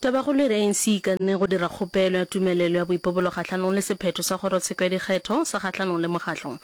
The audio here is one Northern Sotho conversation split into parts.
Tabakgolo e re ANC e ikanne go dira kgopelo ya tumelelo ya boipobolo kgahlanong le sephetho sa kgorotsheko ya dikgetho sa kgahlanong le mokgatlo.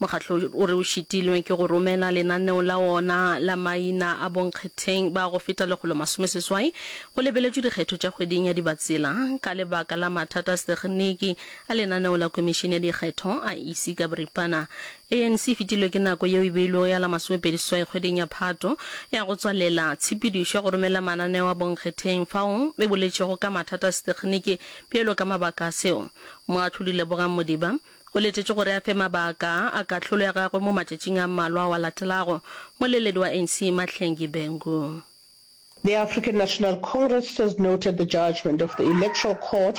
Mokgatlo o re o šitilwe ke go romela lenaneo la wona la maina a bonkgetheng ba go feta lekgolo masome seswai go lebeletšwe dikgetho tša kgweding ya Dibatsela ka lebaka la mathata a setekginiki a lenaneo la Komišene ya Dikgetho, IEC ka boripana. ANC e fetilwe ke nako yeo e beilwego ya la masomepedi seswai kgweding ya Phato ya go tswalela tshepedišo ya go romela mananeo a bonkgetheng fao e boletšego ka mathata a setekgeniki bjalo ka mabaka a seo. Moahlodi Lebogang Modiba o letetšwe gore a fe mabaka a kahlolo ya gagwe mo matšatšing a mmalwa ao a latelago. Moleledi wa ANC Mahlengi Bengu. The African National Congress has noted the judgement of the Electoral Court.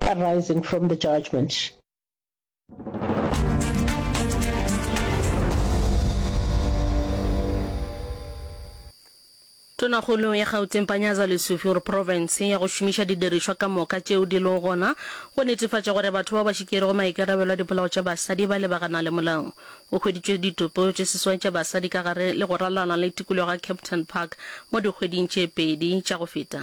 arising from the judgment. Tonakgolo ya Gauteng Panyaza Lesufi o re profense ya go šomiša didirišwa ka moka tšeo di lego gona go netefatša gore batho bao ba šikerego maikarabelo a dipolao tša basadi ba lebagana le molao. Go hweditšwe ditopo tše seswai tša basadi ka gare le go ralala le tikologo ya Kempton Park mo dikgweding tše pedi tša go feta,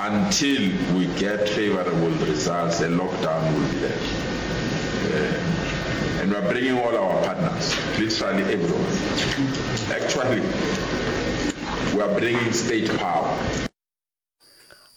Until we get favorable results, a lockdown will be there. And we are bringing all our partners, literally everyone. Actually, we are bringing state power.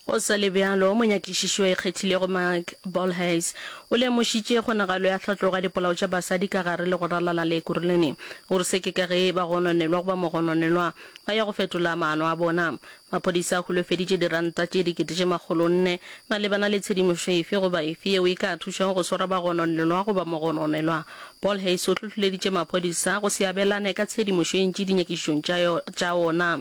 Go sa le bjalo, monyakišiši yo a ikgethilego Mike Bolhuis o lemošitše kgonagalo ya tlhatlogo ya dipolao tša basadi ka gare le go ralala le Ekurhuleni gore se ke ka ge bagononelwa goba mogononelwa a ya go fetola maano a bona. Maphodisa a holofeditše diranta tše dikete tše makgolo nne malebana le tshedimošo efe goba efe yeo e ka thušago go swara bagononelwa goba mogononelwa. Paul Hayes o hlohleleditše maphodisa go se abelane ka tshedimošo e ntši dinyakišišong tša tša ona.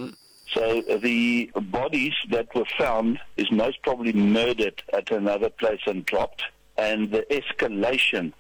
So the bodies that were found is most probably murdered at another place and dropped and the escalation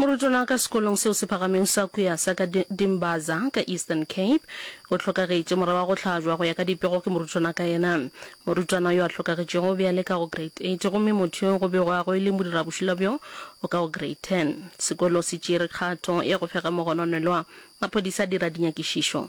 Morutwana wa ka sekolong seo se phagameng sa Kuya sa ka Dimbaza ka Eastern Cape o hlokagetše mora wa go hlajwa go ya ka dipego ke morutwana ka yena. Morutwana yo a hlokagetšego o be a le ka go grade 8 gomme motho yo go bego a go e le modirabošula bjo o ka go grade 10. Sekolo se tšere kgato ya go fega mogononelwa. Maphodisa a dira dinyakišišo.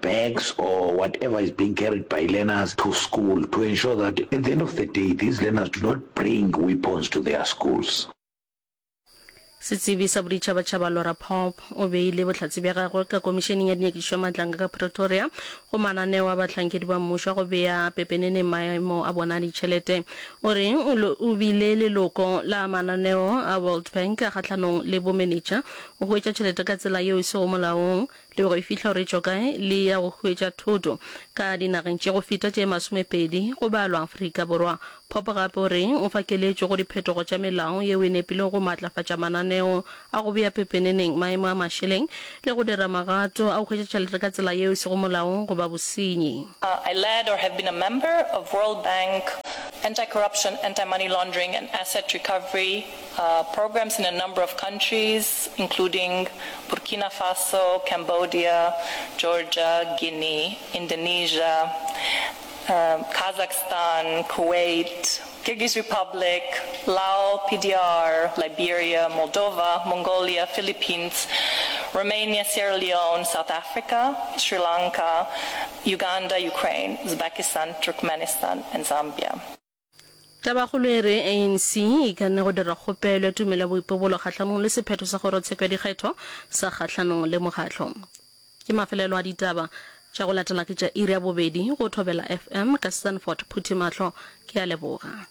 bags or whatever is being carried by learners to school to ensure that at the end of the day these learners do not bring weapons to their schools. Setsebi sa boditšhabatšhaba Laura Popp o beile bohlatse bja gagwe ka Komišeneng ya Dinyakišo ya Matlanga ka Pretoria go mananeo a bahlankedi ba mmušo a go bea pepeneneng maemo a bona a ditšhelete. O re o bile leloko la mananeo a World Bank a kgahlanong le bomenetša go hwetša tšhelete ka tsela yeo e sego molaong Le go e fihla o re tšo kae, le eya go hwetša thoto ka dinageng tše go feta tše masomepedi, go balwa Afrika Borwa. Pope gape o re o fa keletšo go diphetogo tša melao yeo e nepilego go maatlafatša mananeo a go bea pepeneneng maemo a mašeleng le go dira magato a go hwetša tšhelete ka tsela yeo e sego molaong goba bosenyi. I led or have been a member of World Bank Anti-Corruption, Anti-Money Laundering and Asset Recovery. Programs in a number of countries including Burkina Faso, Cambodia, Georgia, Guinea, Indonesia, Kazakhstan, Kuwait, Kyrgyz Republic, Lao, PDR, Liberia, Moldova, Mongolia, Philippines, Romania, Sierra Leone, South Africa, Sri Lanka, Uganda, Ukraine, Uzbekistan, Turkmenistan and Zambia. Tabakgolo e re ANC e ikanne go dira kgopelo ya tumelo ya boipobolo kgahlanong le sephetho sa kgorotsheko ya dikgetho sa kgahlanong le mokgatlo. Ke mafelelo a ditaba tša go latela ke tša iri ya bobedi go Thobela FM ka Stanford Phuthimahlo ke a leboga.